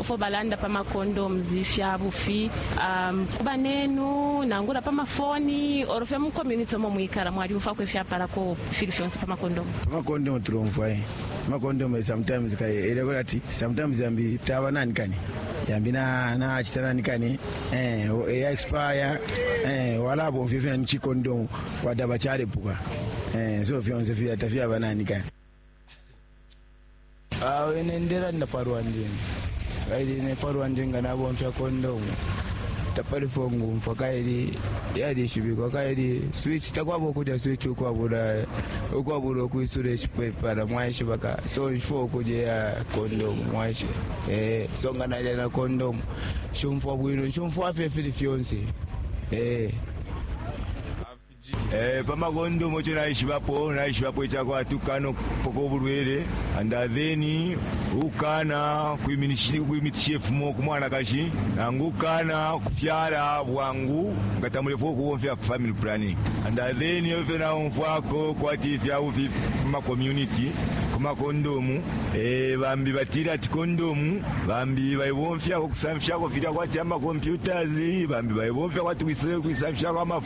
ifyo balanda pa macondoms fya bufi um, ku banenu nangula pa mafoni oro fye mu community omo mwikala mwalyumfwako ifyapalako fili fyonse pa macondomu pa macondomu tulomfwa eh. macondomu sometimes kaye eleko lati sometimes yambi taba nani kani yambi nachita nani kani eh, ya expire eh, walabomfya fyani chicondomu wadaba chalepuka eh, so fyonse fyata fyaba nani kani Awe ine ndelanda pa lwandi ine kaili ine pa lwandi nga nabomfya kondomu tapalifo ngumfwa kaili yalishibikwa kaili switch takwaba ukulya switch ukwabula ukwabula ukwisula icipepala mwaishiba ka so nshifwa ukulya ya kondomu mwaishiba eh, so nga nalya na kondomu shumfwa bwino nshumfwa fye fili fyonse eh. Eh, pa makondomu ico naishibapo naishibapo icakwati ukukana ukupoka ubulwele and then ukukana kwiminishi- kwimitisha ifumo ku mwanakashi nangu ukukana kufyala bwangu nga tamulefwa ukubomfya family planning and then iyo fyo naumfwako kwati ifyabufi mu makommunity ku makondomu eh, bambi batila ati kondomu bambi bayibomfyako kusamfishako filya kwati amacomputers bambi bayibomfya kwati kuisamfishako amafu